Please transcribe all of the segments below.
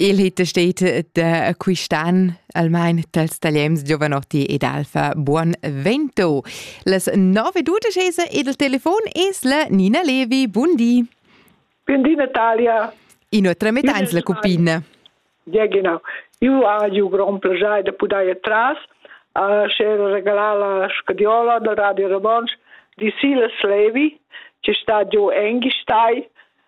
Il hit steht de quistan almain dels tagliems Giovanotti ed Alfa Buon Vento. Les 9.12 ed il telefon es la Nina Levi. Bundi. Bundi Natalia. In otra metà in la cupina. Ja, genau. Io ha ju gran piacere di pudare tras a cer regalar la scadiola del Radio Romansch di Silas Levi, che sta giù Engistai,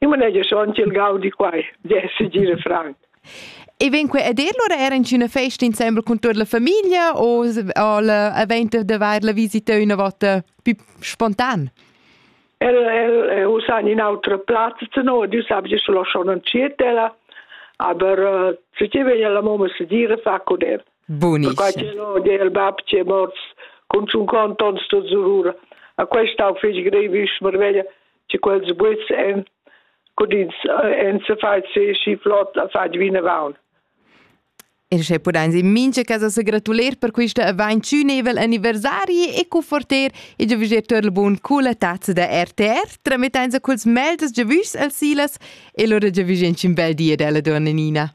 Eu manegia schon ch'el gaudi quai, d'esser gira franc. E vegn que a dir lura era in üna festa insembel con tut la famiglia o avent de vair la visita üna vota più spontan? El el eh, usa in autre platz zu no, du sabes ich lo schon entschiet ella, aber äh, zu ti veglia la mamma se dire fa con el. Buonissimo. Perché il babbo ci è morto con un conto sto zurura. A questa ho fece grevish, marveglia. Tge quels guids en cudins en se fai se schi flott a fai vinavon. E sche pudain in mincha casa se gratuler per quista avantünevel anniversari e conforter e giovigir tel bun cula tazza da RTR tramettain sa culs meldes giovüs al Silas e lura giovigin un bel dia della donna Nina.